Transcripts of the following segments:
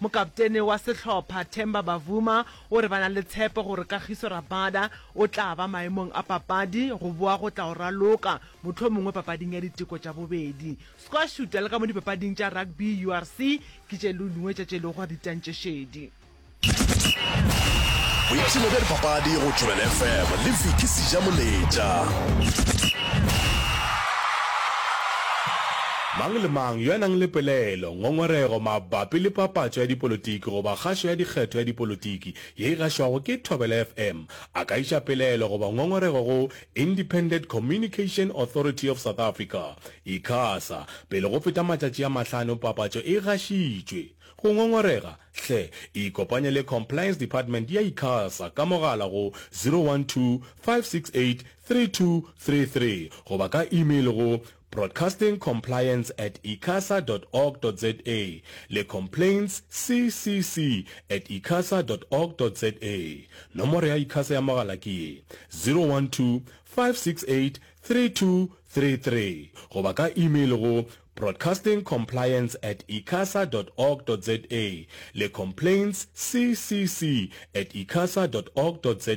Mokaptene wa sehlopha, Temba Bavuma, o re ba na le tshepo gore Kagiso Rabada o tla ba maemong a papadi go boa go tla o raloka, mohlomongwe papading ya diteko tša bobedi. Squash Shuta le ka mo dipapading tša rugby, URC, ke tše lungwe tša tše lego ditantšešedi. Boipshino bja dipapadi go Tšobelo FM le Vicky Sijamoletša. Mang le mang yo a nang le pelaelo, Ngongorego mabapi le papatšo ya dipolotiki goba kgašo ya dikgetho ya dipolotiki ye e gašwago ke Thobela FM, a ka iša pelaelo goba ngongorego go Independent Communication Authority of South Africa, Icasa, pele go feta matšatši a mahlano papatšo e gašitšwe. Go ngongorega, hle ikopanye le Compliance Department ya Icasa ka mogala go 012 568 3233 goba ka email go Broadcasting Compliance at icasa dot org dot za le Complaints CCC at icasa dot org dot za. Nomoro ya Icasa ya mogala ke ye, 012-568-3233 goba ka email go Broadcasting Compliance at icasa dot org dot za le Complaints CCC at icasa dot org dot za.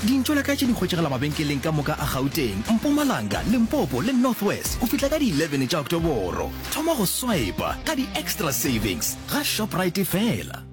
Dintšo la ka tše di hwetšagala mabenkeleng ka moka a Gauteng, Mpumalanga, Limpopo le North West go fihla ka di 11 tša Oktoboro. Thoma go swaipa ka di-extra savings ga Shoprite fela.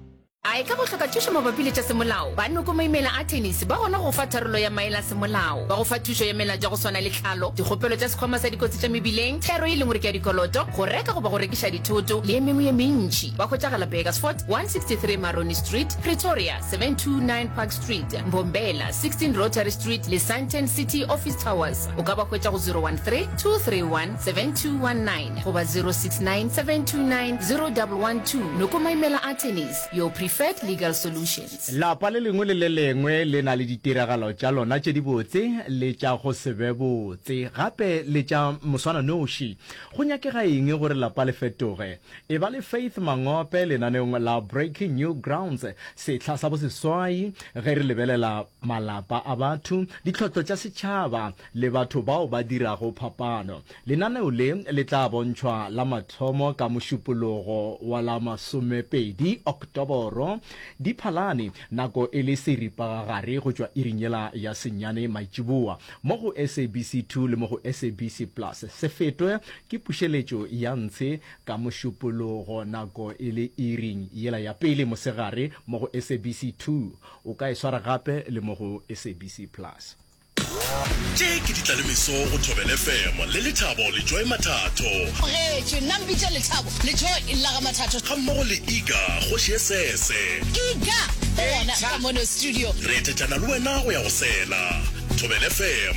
A e ka go hloka thušo mabapi le tša semolao, ba Noko Maimela Attorneys ba gona go go fa tharollo ya maele a semolao. Ba go fa thušo ya mela tša go swana le tlhalo, dikgopelo tša Sekhwama sa Dikotsi tša Mebileng, thero e leng gore ke ya dikoloto, go reka goba go rekiša dithoto le e mengwe ye mentši. Ba hwetšagala Burgersfort, 163 Maroni Street, Pretoria, 729 Park Street. Street, Mbombela, 16 Rotary Street le Sandton City Office Towers. O ka ba hwetša go 013-231-7219 goba 069-729-0112 Nokomaimela Attorneys, your preferred legal solutions. Lapa le lengwe le le lengwe le na le ditiragalo tša lona tše dibotse le tša go se be botse, gape le tša moswananoši. Go nyakega eng gore lapa le fetoge? Eba le Faith Mangope lenaneong la Breaking New Grounds sehla sa boseswai ge re lebelela malapa a batho, ditlhotlo tša setšhaba le batho bao ba dirago phapano. Lenaneo le le tla bontšhwa la mathomo ka Mošupologo wa la masomepedi, Oktoboro, Diphalane, nako e le seripagagare go tšwa iring yela ya senyane maitšiboa, mo go SABC 2 le mo go SABC Plus. Se fetwe ke pušeletšo ya ntshe Ka Mošupologo nako e le iring yela ya pele mosegare mo go SABC 2. O ka e swara gape le mo go SABC Plus. Tše ke ditlalemeso go Thobel FM le Lethabo Lejoe Mathatho. Amogetšwe, nna mpitša Lethabo Lejoe Illaga Mathatho. Ga mmogo le Iga Kgoši ye sese. Iga ke gona ka mono studio. Re etetšana le wena go ya go sela. Thobel FM.